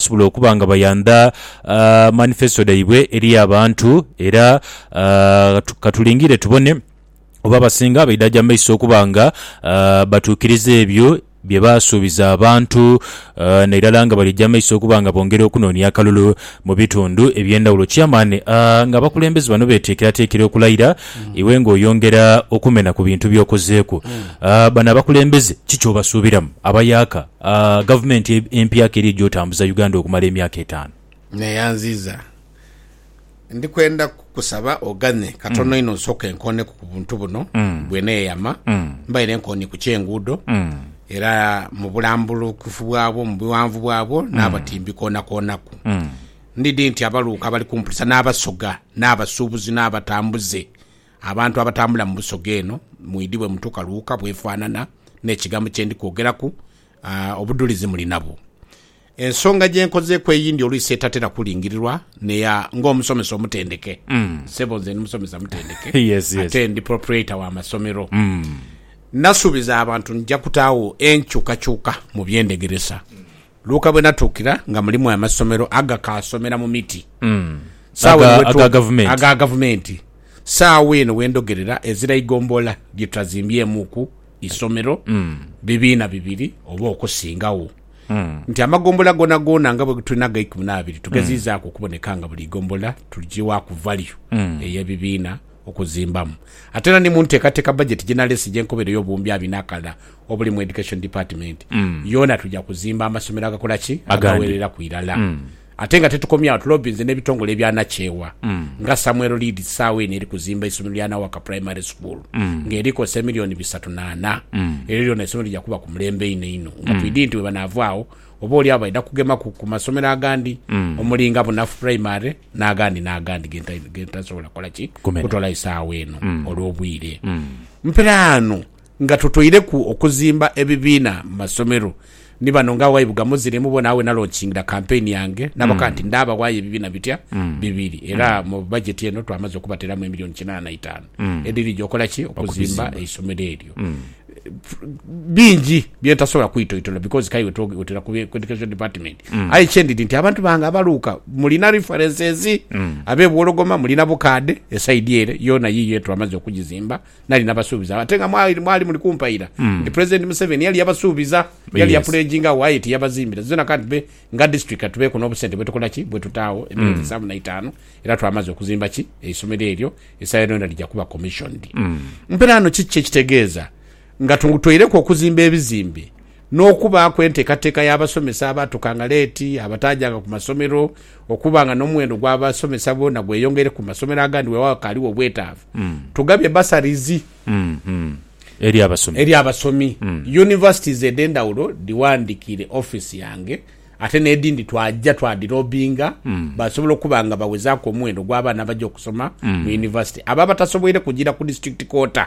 basobole okuba nga bayandha manifesto dhaibwe eri abantu era ka tulingire tubone oba abasinga baidhaja mu maiso okuba nga batuukiriza ebyo bye baasuubiza abantu nairala nga balija mu maiso okuba nga bongera okunoonia akalulu mu bitundu eby'endhawulo. Chairman, ng'abakulembeze bano beeteekerateekera okulayira, iwe ng'oyongera okumena ku bintu by'okozeeku, bano abakulembeze ki ky'obasuubiramu? Abayaka. A Gavumenti empya keri eja otambuza Uganda okumala emyaka etaanu. Neeyanziiza. Ndi kwenda kukusaba oghane katono inho nsooke nkooneku ku buntu buno. Bwe neeyama, mbaire nkoonie ku ky'enguudo era mu bulambulukufu bwabwo, mu bughanvu bwabwo n'abatimbi koonakoonaku. Ndidhi nti abaluuka abali kumpulisa n'Abasoga n'abasuubuzi n'abatambuze Abantu abatambula mu Busoga eno mwidhi bwe mutuuka Luuka bw'efaanana n'ekigambo kye ndi kwogeraku, obudhulizi muli nabwo. Ensonga gye nkozeeku eyindi oluisi etatera kulingirirwa n'eya ng'omusomesa omutendeke. Ssebo, nze ndi musomesa mutendeke ate ndi proprietor wa masomero. Nasuubiza abantu nja kutaagho enkyukakyuka mu by'endhegeresa. Luka bwe natuukira nga mulimu amasomero agakaasomera mu miti. Saagho eno Aga- aga gavumenti. Aga gavumenti. Saagho eno we ndhogerera ezira igombolola lye tutazimbyemukku isomero bibiina bibiri oba okusingagho. Nti amagombolola goonagoona nga bwe tulina aga ikumi n'abiri tugezizaaku okuboneka nga buli igombolola tuligiwaaku value ey'ebibiina okuzimbamu. Ate era ni mu nteekateeka bajeti gye naleese gye nkobeireyo obuwumbi abina akalala obuli mu Education Department yoona tuja kuzimba amasomero agakola ki? Agawereraku irala. Ate nga tetukomye agho, tulobinze n'ebitongole ebya nakyewa nga Samuel Leeds saagho eno eri kuzimba eisomero lya Nawaka Primary School nga eri kozesa emilioni bisatu na ana. Elyo lyoona isomero lija kuba ku mulembe inho inho nga twidhi nti bwebanavaagho oba oli agho baidha kugemaku ku masomero agandi omuli nga Bunafu Primary n'agandi n'agandi gentasobola kukola ki? Kutolayo saagho eno olw'obwire. Mperaano Nga totoireku okuzimba ebibiina mu masomero, ni bano nga awayi bwegamuziremu bona, awe nalonkingira kampeyini yange naboka nti ndaabawayo ebibiina bitya bibiri era mu bajeti eno twamaze okubateeramu emiliyoni kinaana na itaanu edhirija okola ki? Okuzimba eisomero eryo. Bingi bye ntasobola kwitoitola because k'aye wetwogera ku Education Department aye kye ndidhi nti abantu bange abaluuka mulina references, ab'e Bwologoma mulina bukaadhe, esaidi ere yoona yiiyo ye twamaze okugizimba Nali nabasuubiza ate nga mwali mwali muli kumpaira nti President Museveni yali yabasuubiza, yali Yes. yapledinga agho aye tiyabazimbira zona kandi be nga district katubeeku n'obusente bwetukola ki bwetutaagho emyezi nsanvu na itaanu era twamaze okuzimba ki eisomero eryo esawa eno yona lija kuba commissioned. Mperaano kiki kyekitegeeza nga tu tweireku okuzimba ebizimbe n'okubaaku enteekateeka y'abasomesa abaatukanga leeti, abataajanga ku masomero, okuba nga n'omuwendo gw'abasomesa boona gweyongeire ku masomero agandi weewaawo akaaliwo obwetaavu. Tugabye bursaries eri abasomi. Universities edh'endhawulo dhiwandiikiire ofiisi yange ate n'edhindi twaja twadiloobinga baasobola okuba nga bawezaaku omuwendo gw'abaana abaja okusoma mu yunivasite abo abatasoboire kujiira ku District Quarter.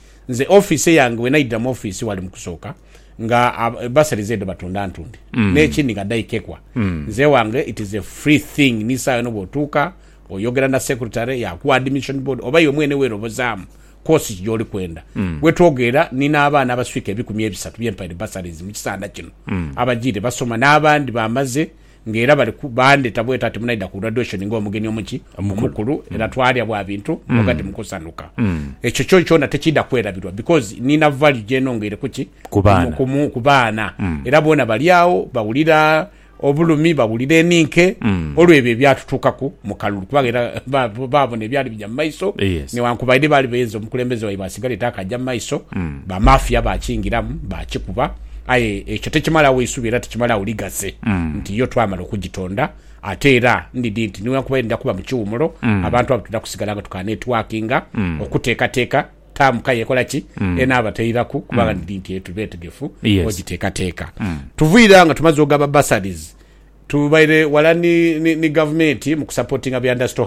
Nze office yange wenaidira mu office wali mukusooka nga bursaries edho batunda ntunde nekindi nga dhaikekwa nze ewange it is a free thing ni sawa yona bwotuuka oyogera na secretary yakuwa admission board oba iwe mwene werobozaamu course ki gyoli kwenda. Wetwogeera nina abaana abaswika ebikumi ebisatu byempaire bursaries mukisanda kino abajiire basoma nabandi bamaze Nga era bali ku, baandheta bweta ati, Munaidha ku graduation nga omugeni omuki? Omukulu. Era twaalya bwa bintu, mboga dhi mu kusanhuka. Ekyo kyo kyona tekiidha kwerabirwa, because niina value gye nongeire ku ki? Ku baana. Ku mu, ku baana. Era boona bali agho, bawulira obulumi, bawulira eninke, olw'ebyo ebyatutuukaku mu kalulu. Kubanga era ba, baabona ebyali bigya mu maiso, Yes. newankubaide baali beenze omukulembeze waibwe asigale taakaja mu maiso, ba mafia baakingiramu, baakikuba. Aye ekyo tekimalagho isubi era tekimalagho lighaze nti yo twamala okugitonda. Ate era ndidhi nti niwankubadhe ndidha kuba mu kiwumulo, abantu abo twidha kusigala nga tukanetwakinga okuteekateeka taamu ka yekola ki enaabatairaku kubanga ndidhi nti tuli beetegefu ogiteekateeka. Tuviire agho nga tumaze ogaba bursaries, tubaire wala ni ni ni gavumenti mu kusapotinga bya ndasito.